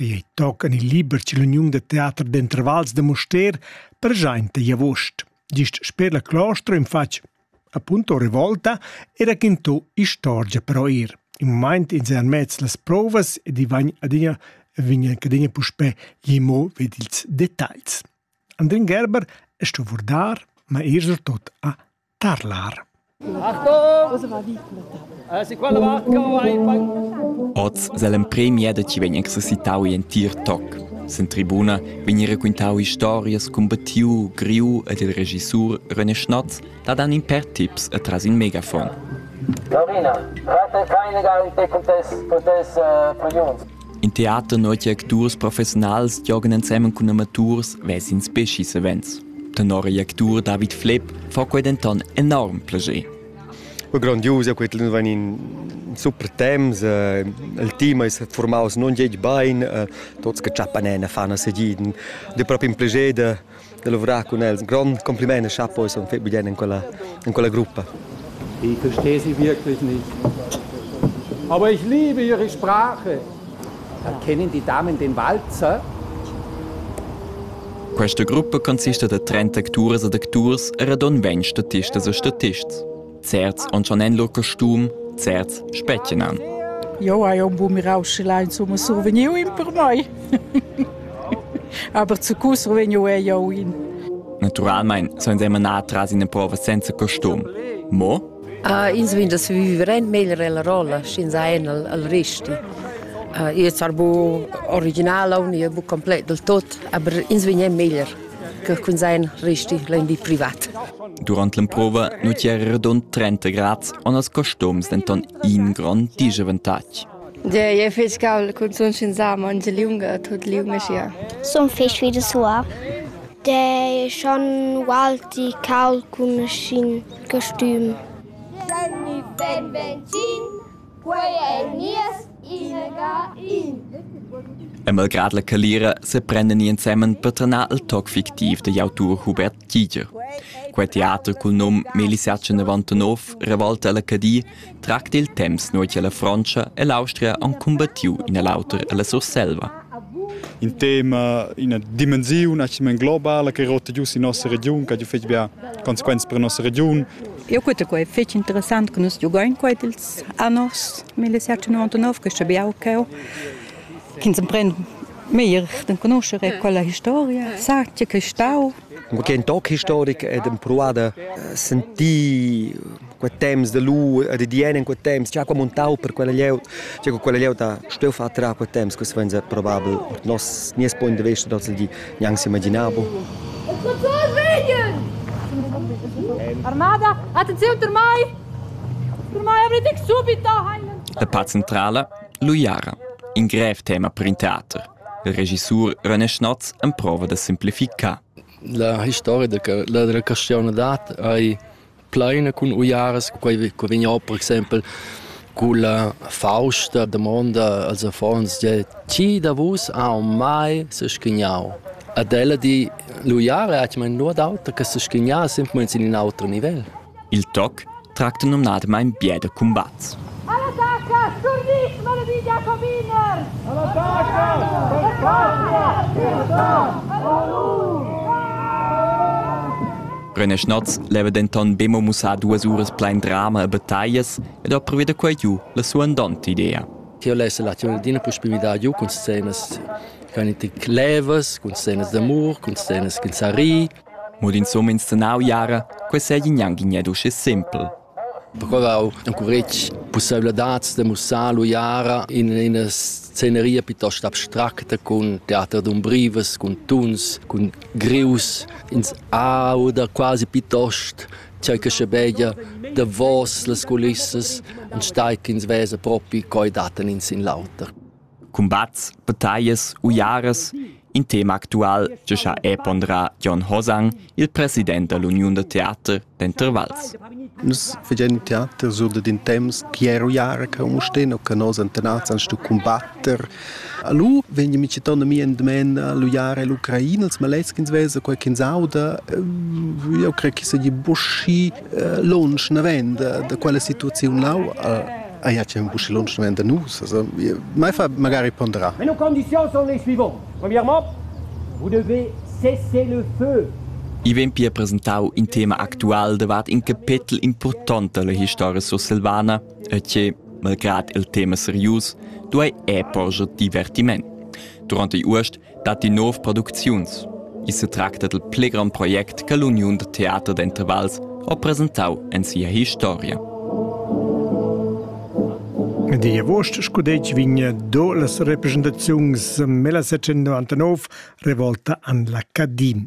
Quei ei tochen il liber ch'ill'uniun da teater d'entervals da Mustér preschainta igl avust. Gist sper la clostra in fatg apunto revolta e raquinto istorgia però ir. In mumaint ins è anmez las provas ed i vagn adina vegn anc adina puspè gimo ved ils detagls. Andrin Gerber è sto vurdar, ma er surtot a Tarlar. Oz sell'empremia da chi vegn exercitau in entir toc. Sen tribuna vegn raquintau historias cun battiu, griu ed il regissur René Schnotz dat an in per tips e tras in megafon. Lorina, rate keine Garantie, contess, contess, uh, für Jungs. In teater notg acturs professiunals giogan ensemen cun amaturs vesins beschi savens. Tenor igl actur David Flepp fa quei denton enorm plascher. Grondiusa quei nu van in super temps, eh, il team è formaus non geg bain, eh, tuts che chappan fan a segiden, de proprio un piacere da lavorar cun els. Ein grond compliment e chapo sono fett bien in quella in quella gruppa. Ich verstehe sie wirklich nicht. Aber ich liebe ihre Sprache. Kennen die Damen den Walzer? Questa gruppa consiste da 30 actures ed acturs e radon 20 statisten e statists. Certs on schon en lur costum, certs spetgenan. Jo hai un bu mirau sche la insomma survegniu in per noi. Aber zu cu survegniu è jo in. Naturalmein sollen sie manà tras in prova senza costum. Mo? Uh, ins vin das viverent meglio la rolla, schinza en al, al resti. Uh, io sar bu original, ni bu complet del tot, aber ins vin è meglio. che cunzegn resti l'imbi privat. Durant l'emprova nu era redond 30 grads, on als costums denton in grond disavantatg. E fetg caul cun sun sin sam ange liunga tut liu meschia. Sun fetg wie de sua. De schon walti caul cun schin costüm. San ben benzin Quei ei nies inaga in. E malgrad la calira seprendan ni ensemen per tanar il toc fictiv digl autur Hubert Giger. Quei teater cul num Melisatge 99 revolta ella Cadi tracta il temps nua che la Frontscha e l'Austria han cumbattiu in e l'auter ella Surselva. Il tema, ina dimensiun, una dimensione globale che rotta giù in nostra region, che ha giù fetg bia conseguenze per la nostra region, Eu queta quai fich interessant che nus giugain quai ils anors 1799 che sabiau ch'eu chi'ns empren meglier d'enconuscher e quella historia sa tge che stau Cun quei toc historic ed empruada sentir quei temps de lu e de dien in quei temps già come un tau per quella lieut già con quella lieut ha steu fatg quei temps que venza probabel nos nies point de vista dal di Gnanc s'imaginar bu. Armada, attenziun per mai! Per mai avete subito La part centrala, l'uiara, in grev tema per in teater. Il regissur René Schnotz emprova da simplificar. La historia della castione d'arte ei plaina cun uiaras, quei che vegn or per exempel culla fausta damonda als affons di, tgi da vus ha mai s'schignau? Ed ella di, l'uiara ha mai nuot auter che s'schignar semplamein sin in auter nivel. Il toc tracta numnadamain bia da cumbat. Alla taca, sturnit, malaviglia, cominer! Alla taca, spettacolo! Alla taca, Reneschnoz leva denton be mo mussar duas uras plein drama e battaglias ed ha pruvi da quei giu la suandonta idea. Tier lessa la tiun adina puspei midar giu cun scenas che ein tik levas, cun scenas d'amur, cun scenas ch'in sa ri. Mo d'insumma inscenau jara, quei sei gnanc gned uschè simpel. Perquei encuretg pusseivladads da mussar l'uiara in ina sceneria piuttost abstracta cun teater d'umbrivas, cun tuns, cun greus. Ins auda quasi piuttost tgei che schebeglia davos las culissas, enstagl ch'ins vesa propi quei dattan ins in l'auter. Cumbats, battaglias, uiaras, in tema actual che ha è ponderà Jon Hosang, il president dell'Uniun da teater d'Intervals. Nus facendo teater sur da din temps chi è uiara che un sten o che nos antenats an stu combatter. Allo vegni mi citando mi en demen l'uiara e l'Ucraina, als maleschins vesa qualche sauda, io creo che sagli buschi lunsch naven da, da quella situaziun lau a ja c'è un busci lunsch naven da nus also mai fa magari pondera mais nos conditions sont les suivantes premièrement vous devez cesser le feu I vegn pia presentau in tema actual davart in capetel important dalla historia sursilvana e che, malgrad il tema serius, duei è porscher divertiment. Durante Uost datti nov producziuns. I setracta dal pli grond project che l'uniun da teater d'intervals ha presentau en sia historia. Die Wurst scudetg vigna do las representaziuns mela 1999 revolta an la Cadin.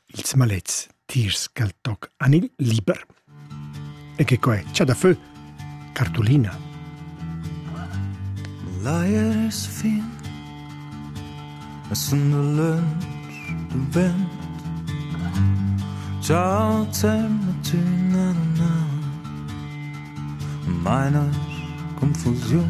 ils malets tiers ch'el toc han il liber. E che quai c'ha da fö? Cartolina. Leiers fin es in lönch du bent Ciao Termatina Meine Konfusion